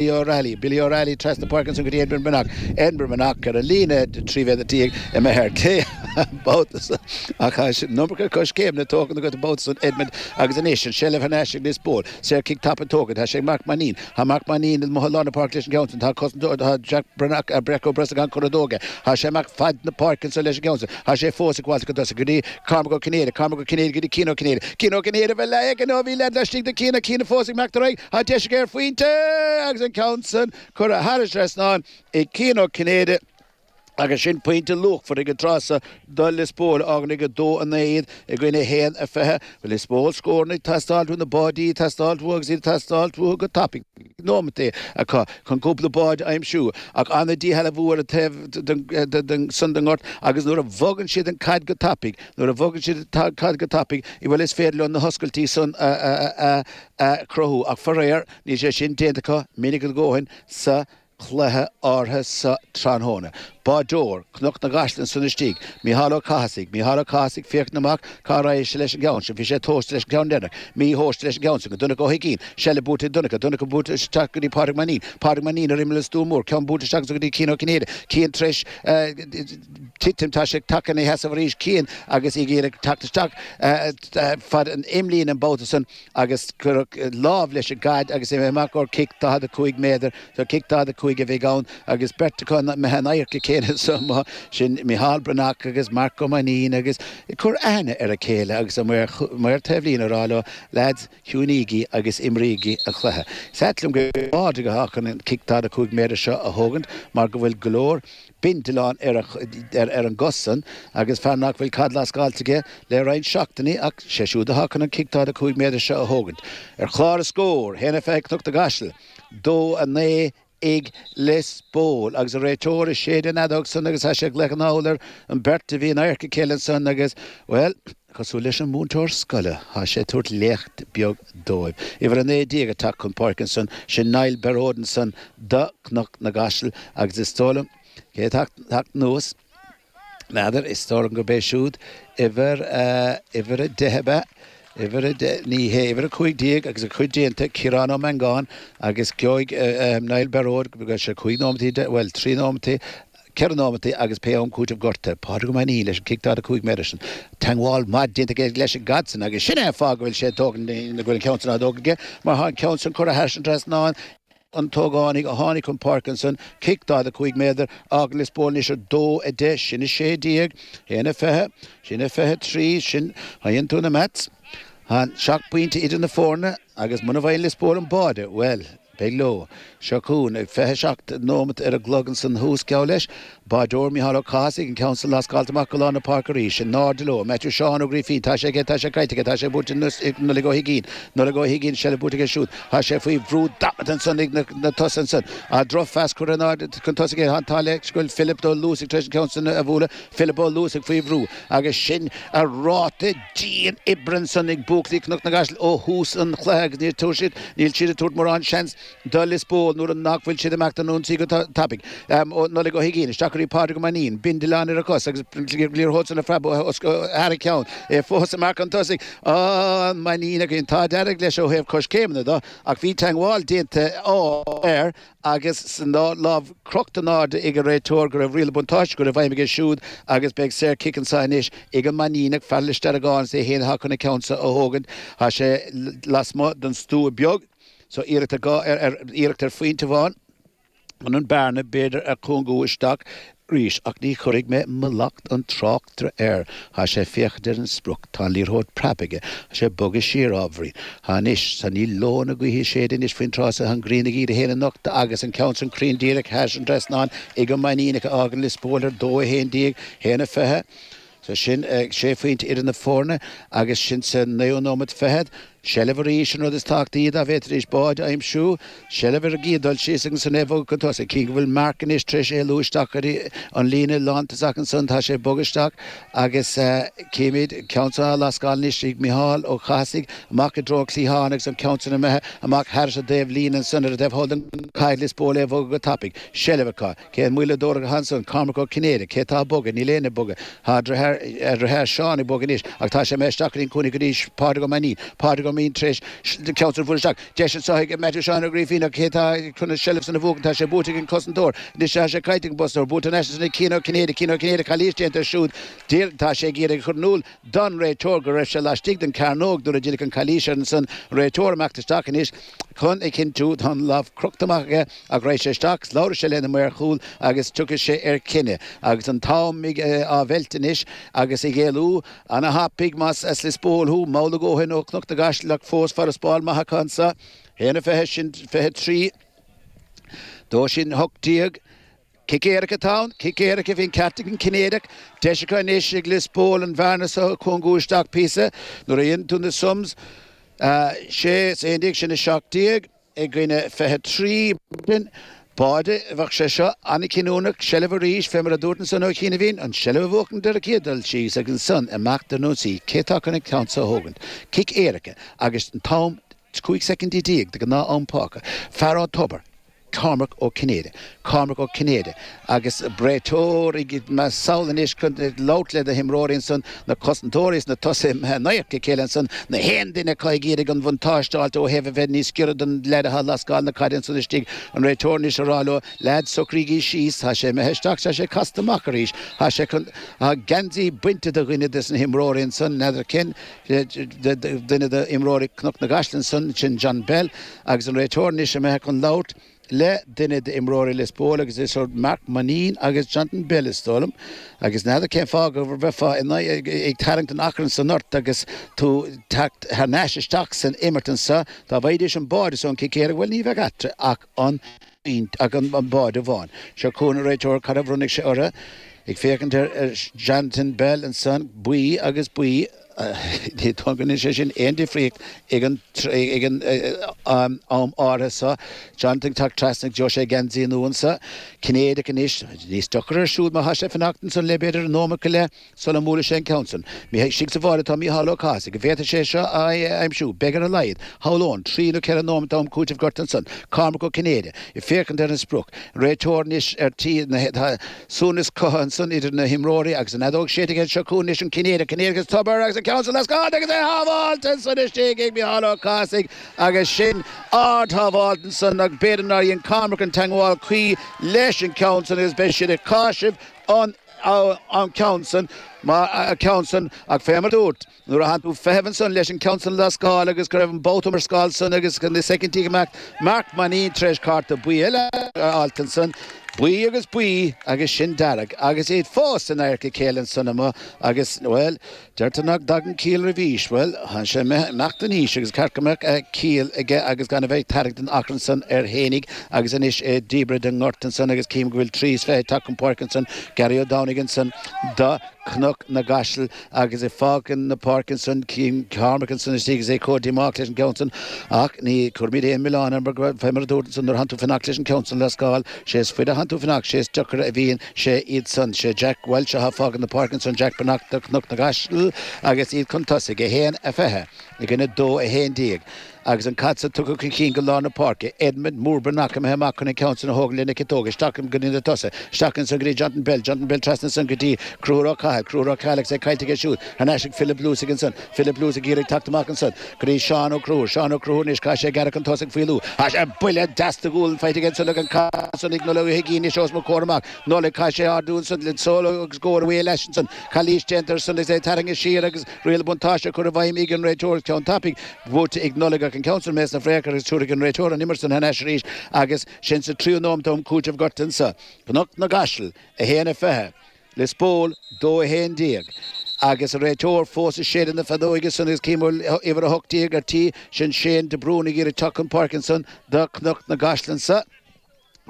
Billy O'Reilly, Billy O'Reilly, trasna páirce anso go dtí Edmond Breathnach, Edmond Breathnach ar an líne trí mhéadar déag ag imeacht ar clé an babhta san ach an iomarca coiscéimeanna tógtha agat an babhta san Edmond agus anois an seilbh thar n-ais ag Lios Póil. Saor cic tapa tógtha, tá sé ag Marc Mainín. Tá Marc Mainín imithe lár na páirce leis an gceann san. Tá cosantóir Jack Breathnach, Breac Ó Brosnacháin curtha dó aige. Tá sé amach faid na páirce anso leis an gceann san. Tá sé fós acu, buailte chun tosaigh go dtí Cormac Ó Cinnéide, Cormac Ó Cinnéide go dtí Cian Ó Cinnéide, Cian Ó Cinnéide bhí leath aige nó bhí leath laistigh de Chian, Cian fós ag imeacht ar aghaidh, tá deis aige ar phointe agus an ceann san curtha thairis an trasnán ag Cian Ó Cinnéide agus sin pointe luachmhar ag an tráth seo do Lios Póil, fágann ag 2-9 iad i gcoinne 1-20. Lios Póil, scóranna ag teastáil uathu, na báidí ag teastáil uathu agus iad ag teastáil uathu go tapaidh. nóimeataí acu chun cúpla báide a aimsiú, ach ana-dhícheallach bhualadh an taobh san den ngort agus nuair a bhogann siad an caid go tapaidh, nuair a bhogann siad an caid go tapaidh, bhuel is féidir leo na hoscailtí san a chruthú ach faraor níl sé sin déanta acu minic a ndóthain sa cluiche áirithe seo tráthnóna. Báideoir Chnoc na gCaiseal ansan istigh, Micheál Ó Cathasaigh, Micheál Ó Cathasaigh féachaint amach cá raghadh sé leis an gceann sin, bhí sé tomhaiste leis an gceann deireanach, mí-thomhaiste leis an gceann san go Donncha Ó hUigín, seilbh buaite ag Donncha, Donncha buailte isteach go dtí Pádraig Mainín, Pádraig Mainín ar imeall an stua mór, ceann buailte isteach ansan go dtí Cian Ó Cinnéide, Cian tréis titim, tá sé tagtha ina sheasamh arís, Cian agus é ag iarraidh teacht isteach fad an imlíne an babhta san, agus cuireadh lámh leis an gcaid agus é amach go cic 45 méadar, so cic 45 a bheidh ann agus beirt atá imithe in adharca a chéile ansan, sin Micheál Breathnach agus Marc Ó Mainnín agus ag cur aithne ar a chéile agus an maor, maor taobhlíne ag rá leo lads ciúnaígí agus imrígí an cluiche. Is ait liom gur Pádraig atá chun an cic 45 méadar seo a thógaint mar go bhfuil go leor bindealán ar an gcos san agus fear nach bhfuil caid lascáilte aige le roinnt seachtainí ach sé siúd atá chun an cic daichead a cúig méadar seo a thógaint. Ar chlár na scór, haon a fiche ag Cnoc na gCaiseal, dó a naoi ag Lios Póil agus an réiteoir ag séideadh an fheadóg san agus tá sé ag glaoch anall ar an bheirt a bhí in adharca a chéile ansan agus, bhuel, Cosúil leis an múinteoir scoile, tá sé ag tabhairt léacht beag dóibh. Uimhir a naoi déag ag teacht chun páirce ansan, sin Niall Bearóid ansan do Chnoc na gCaiseal agus is dóigh liom, cé atá ag teacht anuas, n'fheadar, is dóigh liom gurb é siúd uimhir a, uimhir a deich ab ea, uimhir a deich, ní hé, uimhir a cúig déag agus a chuid déanta, Ciarán Ó Mangáin, agus gheobhaidh Niall Bearóid, gheobhaidh sé cúig nóimeataí, bhuel, trí nóimeataí, 4 nóimeataí agus pé am cúiteamh gortaithe, Pádraig Ó Mainín leis an cic 45 méadar san, teangmháil mhaith déanta aige leis an gcaid san agus sin é an fáth go bhfuil sé ag tógaint go bhfuil an ceann san á thógaint aige mar tá an ceann san curtha thairis an trasnán an t-ógánach a tháinig chun páirce ansan, cic 45 méadar, ag Lios Póil anois 2, 10, sin 16, 1, 20, sin 23, sin, má dheineann tú na maths, han, seacht bpointe idir na foirne agus muna bhfaigheann Lios Póil an báide, bhuel. Beidh Leo. Seo chugainn, ag fiche a seacht nóimeat ar an gclog ansan thuas, geall leis, báideoir, Micheál Ó Cathasaigh, an ceann san lascáilte amach go lár na páirce arís. In airde leo, Maitiú Sheáin Ó Grífín. Tá sé aige, tá sé caillte aige, tá sé buaite anois ag Nollaig Ó hUiginn. Nollaig Ó hUiginn, seilbh buaite aige siúd. Tá sé faoi bhrú damanta ansan ag na tosaithe ansan. An drochphas curtha in airde chun tosaigh aige. Tá an t-ádh leis go bhfuil Philip Ó Luasaigh tar éis an ceann san a bhualadh. Philip Ó Luasaigh faoi bhrú agus sin an ráta. dian oibre ansan ag buachaillí Cnoc na gCaiseal ó thús an chluiche agus níor thug siad níl siad ag tabhairt mórán seans do Lios Póil nuair a nach bhfuil siad ag imeacht an ionsaí go tapaidh. Nollaig Ó hUiginn, isteach go dtí Pádraig Ó Mainín, bindealán ar a chos agus an liathróid san a phreabadh thar a cheann. É fós ag imeacht chun tosaigh an Mainíneach. An t-ádh dearg leis ó thaobh coiscéimeanna de ach bhí teangmháil déanta air Agus tá an lámh crochta in airde ag an réiteoir, go raibh riail na buntáiste go raibh i bhfeidhm aige siúd agus beidh saorchic anso anois ag an Mainníneach, fear Lios Deargáin is é fhéin atá chun an ceann seo a thógaint. Tá sé lasmuigh den stua beag so iarracht ar phointe amháin chun an bearna b'fhéidir a chúngú isteach. arís, ach ní chuirfidh mé mallacht an tráchtaire air. Tá sé ag féachaint ar an sprioc, tá an liathróid preabtha aige, tá sé ag bogadh siar ábhairín. Tá anois, tá níl leoithne gaoithe ag séideadh anois faoin tráth so, tá an ghrian ag iarraidh í féin a nochtadh agus an ceann san cruinn díreach thairis an dtrasnán ag an Mainníneach a fhágann Lios Póil ar dó, 11, 1, 20. So sin sé phointe idir na foirne agus sin sa naoú nóimeat fichead. Seilbh arís an rud is tábhachtaí b'fhéidir tar éis báid a aimsiú. Seilbh ar an gcéad dul síos agus ansan é a bhogadh chun tosaigh. Cím go bhfuil Mark anois tar éis éalú isteach ar an líne lántosach ansan tá sé bogadh isteach agus címid an ceann san á lascáil anois ag Micheál Ó Cathasaigh amach i dtreo an cliatháin agus an ceann san imithe amach thairis an dtaobhlíne ansan ar an dtaobh thall de. Caithfidh Lios Póil é bhogadh go tapaidh. Seilbh acu. Cén mhoill atá orthu ansan? Cormac Ó Cinnéide. Cé tá ag bogadh? Níl éinne ag bogadh. Tá a dhritheár, a dhritheár Seán ag bogadh anois, ach tá sé imithe isteach go dtí'n cúinne go dtí Pádraig Ó Mainín. Pádraig Ó Maín tar éis an ceann san a chur isteach. Deis anso ag Maitiú Sheáin Ó Grífín, ach cé tá chun an tseilbh san a bhuachan? Tá sé buaite ag an gcosantóir. Anois tá sé caillte ag an gcosantóir. Buaite thar n-ais ansan ag Cian Ó Cinnéide. Cian Ó Cinnéide Calaois déanta air siúd. Bhuel, tá sé ag iarraidh a chur in iúl don réiteoir go raibh sé laistigh den gcearnóg nuair a deineadh an chalaois air ansan. Réiteoir ag imeacht isteach anois. chun a chinntiú tá an lámh crochta amach aige ach raghaidh sé isteach is labharfaidh sé lena maoir chúil agus tiocfaidh sé ar chinneadh. Agus an t-am á mheilt anois agus ag éalú, Ana thapaidh más as Lios Póil thú, mall a dhóthain ó Chnoc na gCaiseal ach fós farasbarr maith acu anso. 1, 20 sin 23. Dó sin 18. Cic éirice atá ann, cic éirice, bhí an ceart ag an Cinnéideach. Deis acu anois ag Lios Póil an bhearna seo a chúngú isteach píosa. Nuair a dhéanann tú na sums, sé is aon déag sin 17 i gcoinne 23. An báide, bheadh sé seo, an-chinniúnach, seilbh arís, fé mar a dúrt ansan ó chianaibhín, an seilbh a bhuachan de ricíoth dul síos agus ansan amach don ionsaí, cé tá chun an ceann seo a thógaint. Cic éirice agus an t-am, 15 soicindí de ghnáth-am fágtha. Fear an Tobair. Cormac Ó Cinnéide. Cormac Ó Cinnéide, Agus an réiteoir imithe sall anois chun labhairt le na himreoirí ansan, na cosantóirí is na tosaithe in adharca a chéile ansan, na haon duine acu ag iarraidh an bhuntáiste a fháilt ó thaobh a bheith níos giorra don leaid atá ag lascáil na caide ansan istigh. An réiteoir anois a rá leo, Leaids, socraígí síos, tá sé imithe isteach, tá sé casta amach arís, tá sé chun, tá geansaí bainte de dhuine des na himreoirí ansan, n'fheadar cén, Duine de imreoirí Cnoc na gCaiseal ansan, sin John Bell agus an réiteoir anois imithe chun labhairt le duine de imreoirí Lios Póil agus idir Marc Mainín agus Jonathan Bell is dóigh liom. Agus n'fheadar cén fáth go mbeifeá ag tarraingt an achrainn san ort agus tú teacht thar n-ais isteach san imirt ansan. Dá bhfaighidís an báide seo ón cic éirice, bhuel ní bheadh eatarthu ach an. ach an t-aon bháide amháin. Seo chugainn an réiteoir cad a bhronnfaidh sé orthu. Ag féachaint ar Jonathan Bell ansan, buí agus buí ní dóigh go ndéanfaidh sé sin aon difríocht ag an am áirithe seo. Jonathan ag teacht trasna agus gheobhaidh sé geansaí nua ansan. Cinnéideach anois. Níos deocaire ar siúl má thá sé ag fanacht ansan le b'fhéidir nóimeat go leith. sula mbuailfidh sé an ceann san. Ní hé istigh sa bháide atá Mícheál Ó Cathasaigh an bhféadfadh sé seo a aimsiú, beidh ar a laghad, shamhlóinn, trí nó ceithre nóimint am cúitimh gort ansan, Cormac Ó Cinnéide, ag féachaint ar an sprioc, an réiteoir anois ar tí na, tá suaimhneas cothaithe ansan idir na himreoirí agus an fheadóg séidthe anseo chugainn anois an Cinnéideach, Cinnéideach is tobar agus an ceann san lascáilte agus é sábháilte ansan istigh ag Mícheál Ó Cathasaigh agus sin ard-shábháilt ansan agus b'fhéidir nár dhein Cormac an teangmháil cuí leis an gceann san agus beidh siad ag cáiseamh an an ceann san, mar an ceann san, ach fé mar dúrt, nuair a thánn tú ag feitheamh ansan leis an ceann san a lascáil agus go raibh an babhta iomrascáil san agus na soicindí ag imeacht, Marc Mainín tar éis cárta buí eile a fháilt ansan, buí agus buí agus sin dearg, agus iad fós in adharca a chéile ansan amuigh agus, bhuel, Deirtear nach dtagann ciall roimh aois. Bhuel, thánn sé ag imeacht in aois agus ceart go mbeadh ciall aige agus gan a bheith ag tarraingt an achrainn san air fhéinig agus anois é díbeartha den ngort ansan agus cím go bhfuil trí is fiche ag teacht chun páirce ansan, Garraí Ó Domhnaigh ansan do Cnoc na gCaiseal agus ag fágaint na páirce ansan cím Cormac ansan istigh agus é comh díomách leis an gceann san ach ní cuirimid aon milleán air mar fé mar a dúrt ansan nuair a thánn tú ag fanacht leis an gceann san a lascáil sé is fuide a thánn tú ag fanacht sé is deocaire a bhíonn Sé iad san, sé Jack Walsh atá fágtha na páirc ansan, Jack Breathnach de Chnoc na gCaiseal agus iad chun tosaigh, 1, 20, i gcoinne 2, 11. Agus an caid san tugtha chun chinn go lár na páirce, Edmond Mór Breathnach imithe amach chun an ceann san a thógaint lena chiotóg, isteach go dtí na tosaigh, isteach ansan go dtí Johnton Bell, Johnton Bell trasna ansan go dtí Cruthúr Ó Cathail, Cruthúr Ó Cathail agus é caillte aige siúd, thar n-ais ag Philip Luce ansan, Philip Luce ag iarraidh teacht amach ansan. go dtí Seán Ó Cruthúir. Seán Ó Cruthúir Anois chaith sé gearradh chun tosaigh faoi luas. Chaith sé buille deas de ghualainn faighte ansan aige, an caid san ag Nollaig Ó hUiginn Anois os mo chomhair amach Nollaig chaith sé ardú ansan le sól agus gcomhair away leis ansan calaois déanta air san is é tarraingthe siar agus riail buntáiste á chur i bhfeidhm ag an réiteoir ceann tapaidh buaite ag Nollaig ach an ceann san imithe sna fraitheacha agus tiúrfaidh an réiteoir an imirt san thar n-ais arís agus sin sa tríú nóimeat d'am cúitimh gorta anso Cnoc na gCaiseal, 1-20. Lios Póil, dó 11. Agus an réiteoir fós ag séideadh na feadóige san agus cím go bhfuil uimhir 18, ar tí, sin Shane de Brún ag iarraidh teacht chun páirce ansan do Chnoc na gCaiseal anso.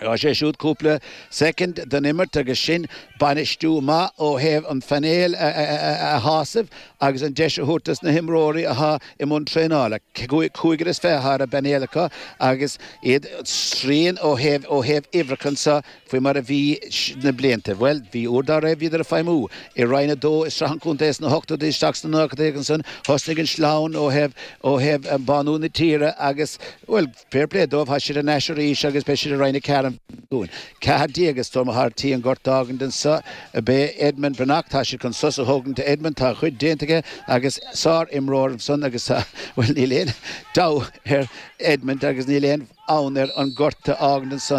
Gheobhaidh sé siúd cúpla soicind den imirt agus sin bainistiú maith ó thaobh an phainéal a shásamh agus an deis a thabhairt dos na himreoirí atá i mbun traenála. Cúigear is fiche ar an bpainéal acu agus iad srian ó thaobh uimhreacha anso. faoi mar a bhí sna blianta. Bhuel, bhí uair dá raibh, bhíodar ag feidhmiú i Roinn a Dó i Sraith an Chontae sna hochtóidí isteach sna nóchaidí agus ansan thosnaigh an sleamhain ó thaobh, ó thaobh bánú na tíre agus, bhuel, fair play dóibh, thá siad thar n-ais arís agus beidh siad i Roinn a Ceathair an bhliain ceathair déag is dóigh, atá ar tí an gort d'fhágaint anso ab é Edmond Breathnach, tá siad chun sos a thógaint do Edmond, tá a chuid déanta aige agus sár imreoir ansan agus tá, bhuel, níl aon deabhadh ar Edmond agus níl aon fhonn air an gort a fhágaint ansan.